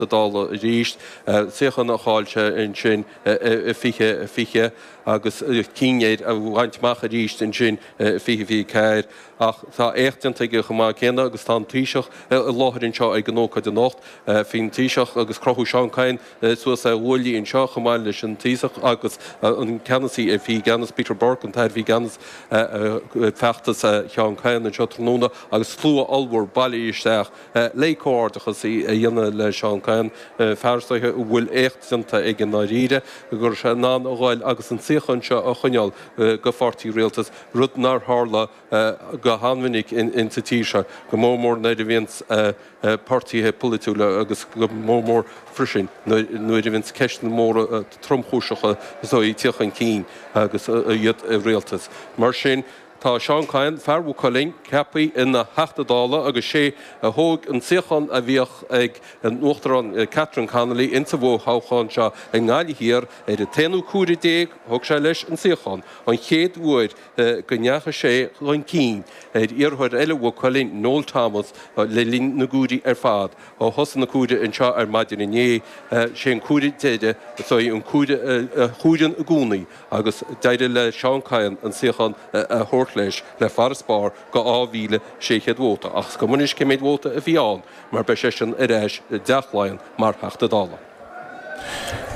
na Dála arís. Suíochán a chaill sé ansin i 2020 agus chinn air a bhaint amach arís ansin i 2024. Ach tá éacht déanta aige chomh maith céanna agus tá an Taoiseach i láthair anseo ag an ócáid anocht. Bhí an Taoiseach agus crochadh Seán Kyne suas ar ghuaillí anseo chomh maith leis an Taoiseach agus an ceannasaí a bhí i gceannas, Peter Burke, an t-aire a bhí i gceannas, ag feachtas Sheáin Kyne anseo tráthnóna agus slua ollmhór bailithe isteach. le comhghairdeachas a dhéanamh le Seán Kyne, fear is dóigh a bhfuil éacht déanta aige i ndáiríre, go raibh sé in ann a ghabháil agus an suíochán seo a choinneáil do Pháirtí Rialtais, rud nár tharla go han-mhinic sa tír seo, go mór mór nuair a bhíonns páirtithe polaitiúla agus go mór mór freisin nuair a bhíonns ceisteanna móra tromchúiseacha is dóigh ag tiacht chun cinn agus iad i Rialtas. Mar sin. Tá Seán Kyne, fear Mhaigh Cuilinn, ceaptha ina Theachta Dála agus sé a thóg an suíochán a bhíodh ag an Uachtarán Catherine Connolly insa bhfo-thoghchán seo i nGaillimh Thiar ar an t-aonú comhaireamh déag a thug sé leis an suíochán, an chéad uair go ndeachaigh sé chun cinn ar iarrthóir eile Mhaigh Cuilinn, Noel Thomas, le linn na gcomhairí ar fad ó thosaigh an comhaireamh anseo ar maidin inné. Sé an comhaireamh deiridh, is é an comhaireamh a chomhaireann i gcónaí, agus d'éirigh le Seán Kyne an suíochán a thabhairt leis le farasbarr de 2,600 vóta, ach is cuma anois cé mhéad vóta a bhí ann mar beidh seisean ar ais i dTeach Laighean mar Theachta Dála.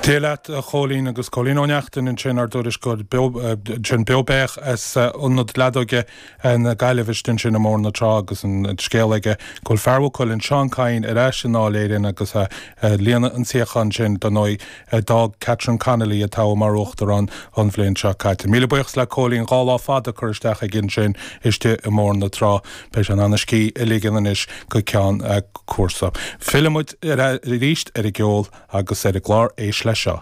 Dia leat a Chóilín agus Cóilín Ó Neachtain ansin ár dtuairisceoir ansin beo beathach as ionad leadóige na Gaillimhe istigh ansin i mBóthar na Trá agus an scéal aige go bhfuil fear Mhaigh Cuilinn Seán Kyne ar ais i nDáil Éireann agus líonadh an suíochán sin dar ndóigh a d'fhág Catherine Connolly, a toghadh mar uachtarán an bhliain seo caite. Míle buíochas le Cóilín, dhá lá fada curtha isteach aige ansin istigh i mBóthar na Trá. Beidh sé in ann a scíth a ligean anois go ceann cúrsa. Fillfimid aríst ar an gceol agus ar an gclár. Éist leis seo.